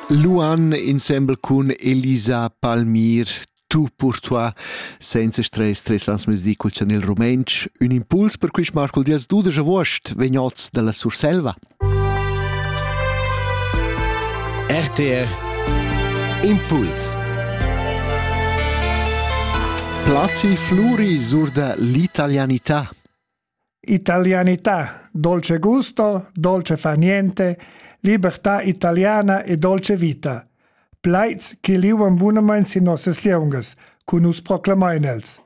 Luan insembel cun Elisa Palmir Tu pour toi senza stress tres ans mezdi cul chanel rumentsch ün impuls per quist Marcul Dias dudesch avuost vegnots dalla Surselva. RTR Impuls Placi Fluri sur da l'italianità Italianità, dolce gusto, dolce fa niente, libertà italiana e dolce vita. Plaids che liuan bunamain sin nossas lieungas, cu nus proclamain els.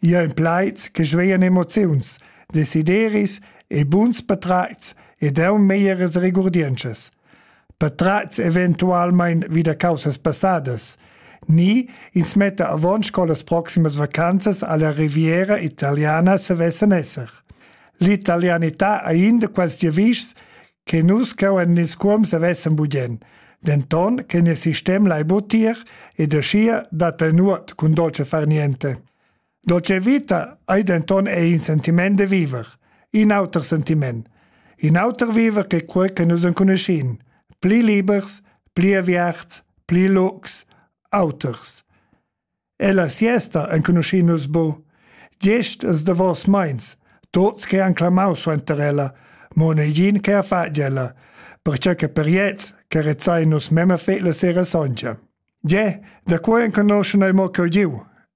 Ia en plaids che svean emoziuns, desideris e buns patratgs ed eu meières regurdientschas. patratgs eventualmein vi da caussas passadas ni ins metta avon sco las proximas vacanzas alla Riviera italiana savessan esser. L'italianità ha in da quels giavischs che nus cheu en ils cuoms avessan bugen, denton che nies sistem lai butir ed aschia dat ei nuot cun dolce far niente. Dolce vita ei denton ei in sentiment de viver, in auter sentiment, in auter viver che quei che nus enconuschin, pli libers, pli aviarts, pli lux, auters. E la siesta enconuschin nus bu. Gest es de vos meins, tots che han clamau suenter ella, mon e gin che ha fatgela, perciò che per jets che rezzai nus memme fet la sera songia. Ge, da qua enconoschan ei mo cheu giu,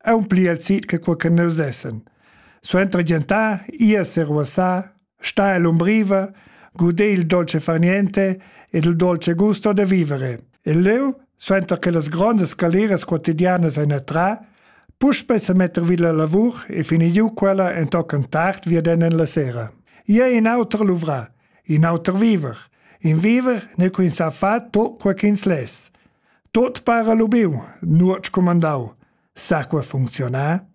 aun pli el sit che quei che nus essen. Suenter gentar, ir seruossar, sta el umbriva, gudé il dolce far niente ed il dolce gusto da vivere. E leu, suenter che las grondas galeras quotidianas ein attra, puspei se metter vid la lavur e fini giu quella entochen tard vieden en la sera. Ia in auter luvra, in auter viver. In viver ne quin sa fa to quaquins les. Tot para lubiu, nuot scumandau, sa qua funcziunar?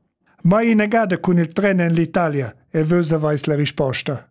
Mai inagada cun il tren en l'Italia e vus aveis la risposta.